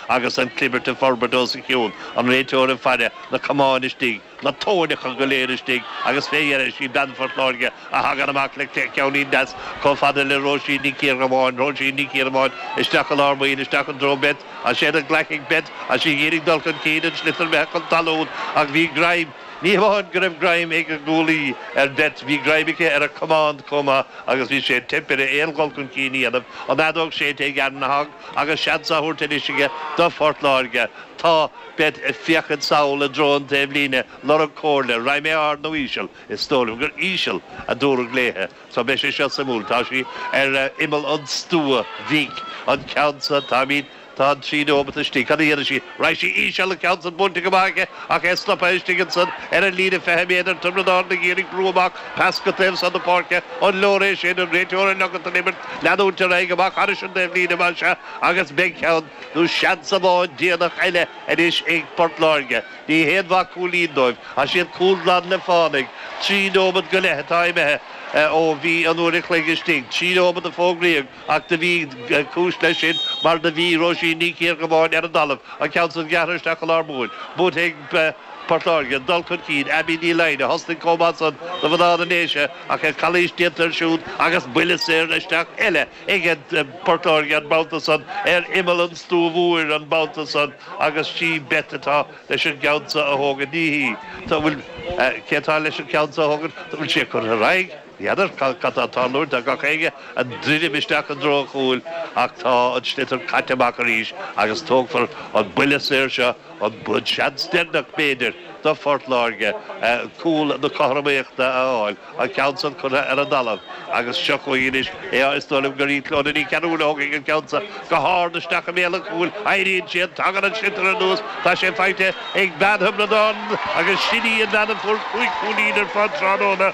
agus an clibirt ag forbairt ansiúd, an réiteoir ag faire, na camáin istigh, na tóineacha go léir istigh agus fé dheireadh sí bean Phort Láirge a thagann amach leis ceannín deas chomh fada le Róisín Ní Chiardhubháin, Róisín Ní Chiardhubháin, isteach i lár baill, isteach i dtreo Beth, tá sé glactha ag Beth, tá sí ag d'iarraidh dul chun cinn an sliotar imithe chun talún ach bhí greim, ní hamháin go raibh greim ag an gcúlaí ar Beth, bhí greim aici ar a camán chomh maith agus bhí sé ag teip uirthi aon dul chun cinn a dhéanamh, an fheadóg séidte ag Ann na. Agus seans á thabhairt anois aige do Phort Láirge, tá Beth ag féachaint sall i dtreo an taobhlíne lorg comhairle, raghaidh mé ard nó íseal, is dóigh liom gur íseal a dúradh léithe, so beidh sé seo suimiúil, tá sí ar imeall an stua bhig, an ceann san, táimid, tá an trí nóimeat istigh, cad a dhéanfaidh sí? Raghaidh sí íseal an ceann san buailte go maith aici ach é stoptha istigh ansan ar an líne 20 méadar. Tiobraid Árann ag iarraidh brú amach pas go taobh san na páirce. An leor é sin? An réiteoir ag ligint don imirt leanúint ar aghaidh amach thairis an taobh líne mar san agus beidh ceann nó seans amháin déanach eile anois ag Port Láirge. Ní haon mhaith cúilín dóibh tá siad cúl glan le fánaidh trí nóimead go leith atá imithe ó bhí an uair a chloig istigh. Trí nóimead a fógraíodh. Ach do bhí cúis leis sin mar do bhí Róisín Ní Chiardhubháin ar an dtalamh, an ceann san gearrtha isteach go lár baill, buaite ag Port Láirge, an dul chun cinn Abby Ní Fhloinn a thosnaigh chomh maith san do mhná na nDéise ach an chalaois déanta ansiúd agus buille saor isteach eile ag Port Láirge an babhta san ar imeall an stua mhóir an babhta san agus sí Beth atá leis an gceann san a thógaint. Ní hí. Tá. Bhuel, cé atá leis an gceann san a thógaint? Tá. Bhuel, sé curtha ar aghaidh. N'fheadar cad atá ag tarlú tá gach éinne ag druidim isteach i dtreo an chúil ach tá an sliotar caite amach arís agus tógfar an buille saor seo, an seans deireanach b'fhéidir do Phort Láirge cúl na cothromaíochta a fháil, an ceann san curtha ar an dtalamh agus seo chugainn anois é is dóigh liom gur í Clodagh Ní Chearúil a thógfaidh an ceann san go hard isteach i mbéal an chúil, éiríonn siad, tagann an sliotar anuas, tá sé faighte ag bean Thiobraid Árann agus sin í an bhean a fuair cúig chúilín ar fad tráthnóna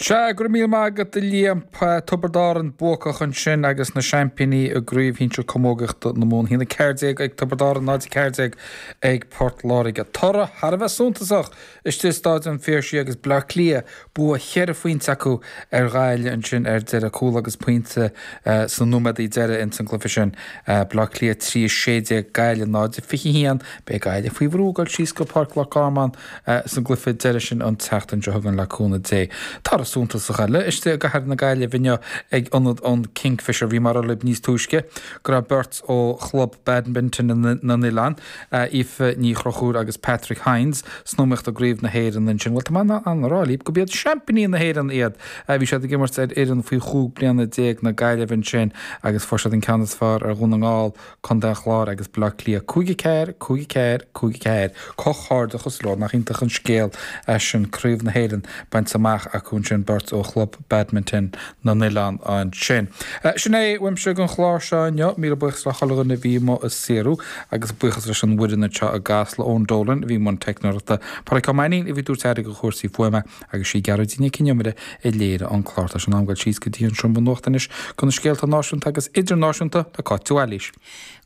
Sea, go raibh míle maith agat a Liam. Tiobraid Árann buacach ansin agus na seaimpíní i gCraobh Shinsir Camógaíochta na Mumhan. 1 14 ag Tiobraid Árann, 0 14 ag Port Láirge. Toradh thar a bheith suntasach istigh i Staid an Phiarsaigh agus Bleá Cliath bua cheithre phointe acu ar Ghaillimh ansin ar deireadh. Cúl agus pointe sna nóiméadaí deiridh ins an gcluiche sin. Bleá Cliath 3 16 Gaillimh 0 21. Beidh Gaillimh faoi bhrú ag dul síos go Páirc Loch Garman. Sa gcluife deiridh sin an tseachtain seo chugainn le cúnamh Dé toradh suntasach eile istigh i gcathair na Gaillimhe inniu ag ionad an Kingfisher. Bhí mé ag rá libh níos túisce go raibh beirt ó Chlub Badminton na nOileán, Aoife Ní Chonchúir agus Patrick Hynes, san iomaíocht i gCraobh na hÉireann ansin. Bhuel, tá mé in ann a rá libh gurb iad seaimpíní na hÉireann iad! Bhí siad ag imirt ar fhoireann faoi chúig bliana déag na Gaillimhe ansin agus fuair siad an ceann is fearr ar Dhún na nGall, Contae an Chláir agus Baile Átha Cliath 5 4, 5 4, 5 4. Comhghairdeachas leo. Nach iontach an scéal é sin, Craobh na hÉireann bainte amach acu ansin, beirt ó Chlub Badminton na nOileán ansin. Sin é uaimse ag an chlár seo inniu. Míle buíochas le chuile dhuine a bhí i mo saoradh agus buíochas leis an bhfoireann anseo i gCasla, Eoin Dolan a bhí i mbun teicneoireachta, Pádraig Ó Mainín a bhí ag tabhairt aire do chúrsaí fuaime, agus sí Gearóidín Nic An Iomaire a léirigh an clár. Tá sé in am dul síos go dtí an seomra nuachta anois do na scéalta náisiúnta agus idirnáisiúnta le Cáit de Bhailís.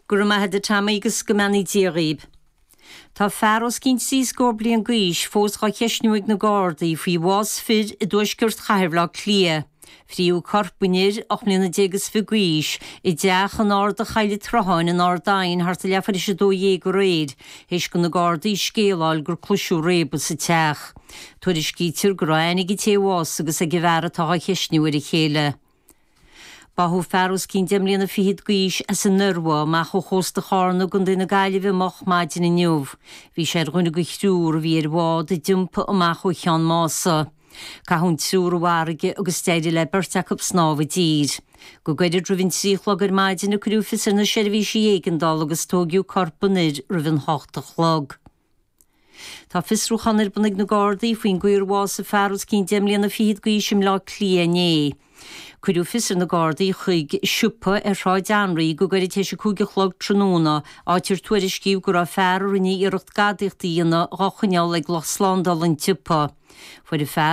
Go raibh maith agat Tommy agus go mbeannaí Dia dhaoib. Tá fear os cionn trí scór bliain d'aois fós dhá cheisniú ag na Gardaí faoi bhás fir i dtuaisceart Chathair Bhaile Átha Cliath. Fritheadh corp an fhir, ocht mbliana déag is fiche d'aois, i dteach in Arda Choill an tSrutháin in Ard Aidhin thart ar leathuair théis a dó dhéag aréir, théis do na Gardaí scéala a fháil gur cloiseadh réabadh sa teach. Tuairiscítear go raibh aithne ag an té a bhásaigh agus ag an bhfear atá á cheistniú ar a chéile. Báthadh fear os cionn deich mbliana fichead d'aois as an Iorua amach ó chósta Charna i gContae na Gaillimhe moch maidin inniu. Bhí sé ar dhuine de thriúr a bhí ar bhád a d'iompaigh amach ó Cheann Mása. Caitheadh an triúr i bhfarraige agus d'éirigh le beirt acu snámh i dtír. Go gairid roimh an trí a chlog ar maidin a cuireadh fios ar na seirbhísí éigeandála agus tóigeadh corp an fhir roimh an hocht a chlog. Tá fiosrúchán ar bun ag na Gardaí faoin gcaoi ar bhásaigh fear os cionn deich mbliana fichead d'aois i mBleá Cliath inné. Cuireadh fios ar na Gardaí chuig siopa ar Shráid Anraí go gairid tar éis a cúig a chlog tráthnóna, áit ar tuairiscíodh go raibh fear a rinne iarracht gadaíocht a dhéanamh dhá choinneáil ag lucht slándála an tsiopa. Fuair an fear,